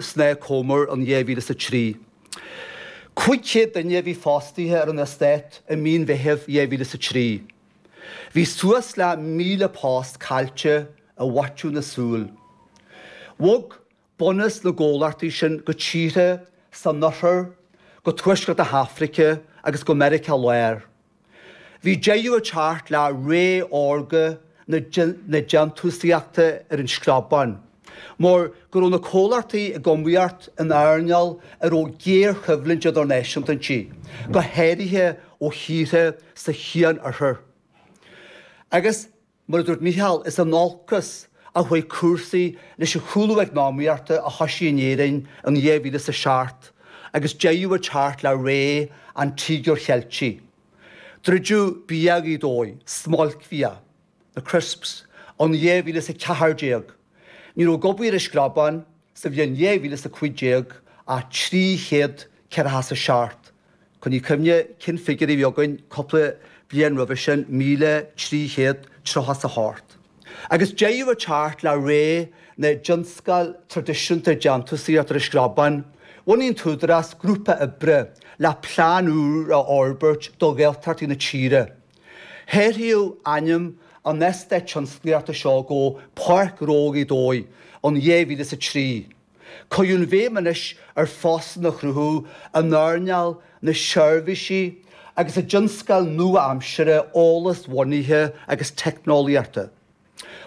Snáth Comer in 2003. Cúig chéad duine a bhí fostaithe ar an eastát i mí an Mheithimh 2003. Bhí suas le 1,000 post caillte i bhfaiteadh na súl. Bhog bunús na gcomhlachtaí sin go tíortha san Oirthear, go Tuaisceart na hAfraice agus go Meiriceá Láir. Bhí deireadh ag teacht le ré órga na déantúsaíochta ar an Screabán mar go raibh na comhlachtaí ag iomaíocht in earnáil a raibh géarchoimhlint idirnáisiúnta inti, go háirithe ó thíortha sa Chian-Oirthear. Agus. Mar a dúirt Mícheál, is in olcas a chuaigh cúrsaí leis an chúlú eacnamaíochta a thosaigh in Éirinn in 2007 agus deireadh ag teacht le ré an Tíogair Cheiltigh. Druideadh Bia Ghaoth Dobhair, smailcbhia, na crisps, in 2014. Ní raibh ag obair ar an Screabán sa bhliain 2015 ach 347. Coinnigh cuimhne cén figiúr a bhí againn cúpla bliain roimhe sin, míle trí chéad tríocha is a hocht. Agus deireadh ag teacht le ré na dtionscal traidisiúnta déantúsaíochta ar an Screabán, bhunaigh an tÚdarás grúpa oibre le plean úr a fhorbairt do Ghaeltachtaí na tíre. Hathraíodh ainm an eastáit tionsclaíochta seo go Páirc Ghnó Ghaoth Dobhair in 2003. Cuireadh an bhéim anois ar phostanna a chruthú, in earnáil na seirbhísí agus i dtionscail nua-aimseartha eolas-bhunaithe agus teicneolaíochta.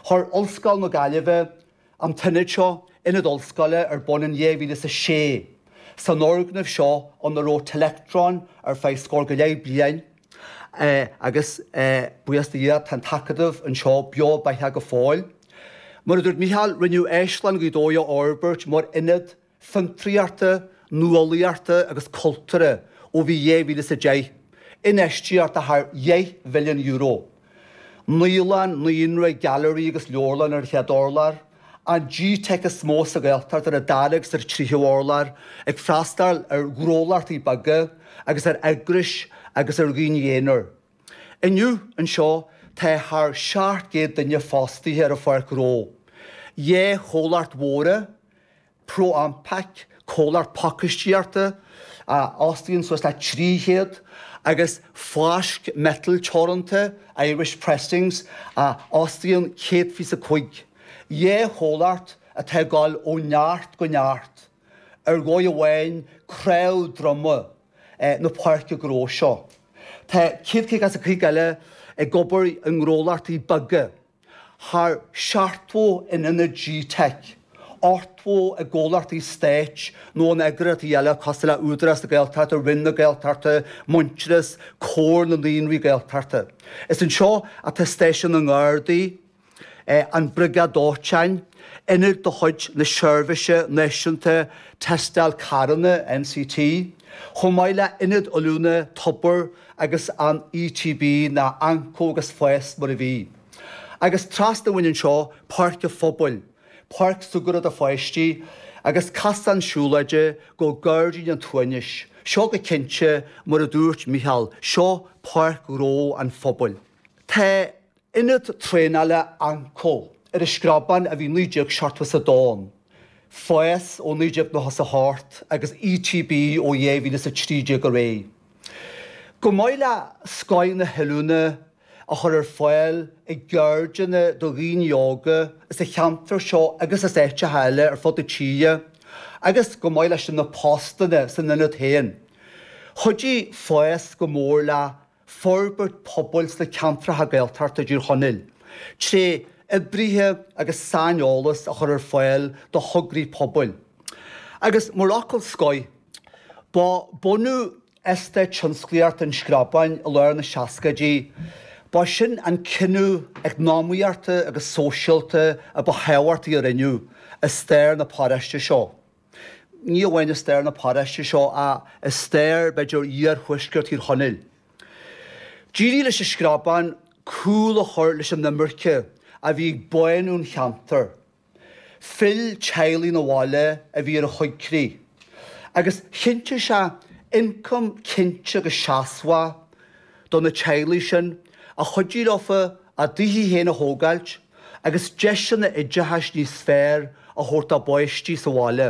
Chuir Ollscoil na Gaillimhe an t-ionad seo, Ionad Ollscoile, ar bun in 2006. San fhoirgneamh seo, ina raibh Telectron ar feadh scór go leith bliain, Agus buíochas do Dhia, tá an tAcadamh anseo, beo beathach go fóill. Mar a dúirt Mícheál, rinneadh Áislann Ghaoth Dobhair a fhorbairt mar ionad fiontraíochta, nuálaíochta agus cultúrtha ó bhí 2010. Infheistíocht de thar dheich mhilliún euro. Naíolann, naíonra, gailearaí agus leabharlann ar an chéad urlár. an gteic is mó sa Ghaeltacht ar an dara agus ar an tríú urlár, ag freastal ar ghnólachtaí beaga agus ar eagrais agus ar dhaoine aonair. Inniu, anseo, tá thar 700 duine fostaithe ar an pháirc ghnó, dhá chomhlacht mhóra, ProAmpac, comhlacht pacáistíochta a fhostaíonn suas le 300, agus Fáisc Miotail Teoranta, Irish Pressings, a fhostaíonn 125. Dhá chomhlacht atá ag dul ó neart go neart. Ar dhóigh amháin, cnámh droma na páirce gnó seo. Tá 150 as an chuid eile ag obair i ngnólachtaí beaga. thar seachtó in ionad gteic, ochtó i gcomhlachtaí stáit nó in eagraíochtaí eile cosúil le Údarás na Gaeltachta, Roinn na Gaeltachta, Muintearas, Comhar na Naíonraí Gaeltachta. Is anseo atá Stáisiún na nGardaí, An Briogáid Dóiteáin, Ionad de chuid na Seirbhíse Náisiúnta Tástáil Carranna, NCT, chomh maith le hIonad Oiliúna Tobar agus an ETB ná AnCO agus Fás mar a bhí. Agus trasna uainn anseo, páirc an phobail, páirc súgartha do pháistí, agus casán siúlóide go Gairdín an tSuaimhnis. Seo go cinnte, mar a dúirt Micheál, seo páirc ghnó an phobail. Ionad Traenála AnCo. Ar an Screabán a bhí 1972 ann, FÁS ó 1988 agus ETB ó 2013 ar aghaidh. Chomh maith le scoth na hoiliúna a chur ar fáil i gceirdeanna do dhaoine óga as an cheantar seo agus as áiteacha eile ar fud na tíre agus chomh maith leis na postanna san Ionad féin, chuidigh FÁS go mór le. forbairt pobail sna ceantracha Gaeltachta i dTír Chonaill, tré oibrithe agus saineolas a chur ar fáil do thograí pobail, agus mar fhocal scoir, ba bunú Eastáit Tionsclaíochta an Screabáin i lár na seascaidí, ba sin an cinneadh eacnamaíochta agus sóisialta a ba thábhachtaí a rinneadh i stair na paróiste seo. Ní amháin i stair na paróiste seo ach i stair, b'fhéidir, iarthuaisceart Thír Chonaill, d'éirigh leis an Screabán cúl a chur leis an imirce a bhí ag bánú an cheantair. Phill teaghlaigh 'na bhaile a bhí ar an choigríoch agus chinntigh sé ioncam cinnte agus seasmhach do na teaghlaigh sin a chuidigh leofa a dtithe féin a thógáilt, agus deiseanna oideachais níos fearr a thabhairt dá bpáistí sa bhaile.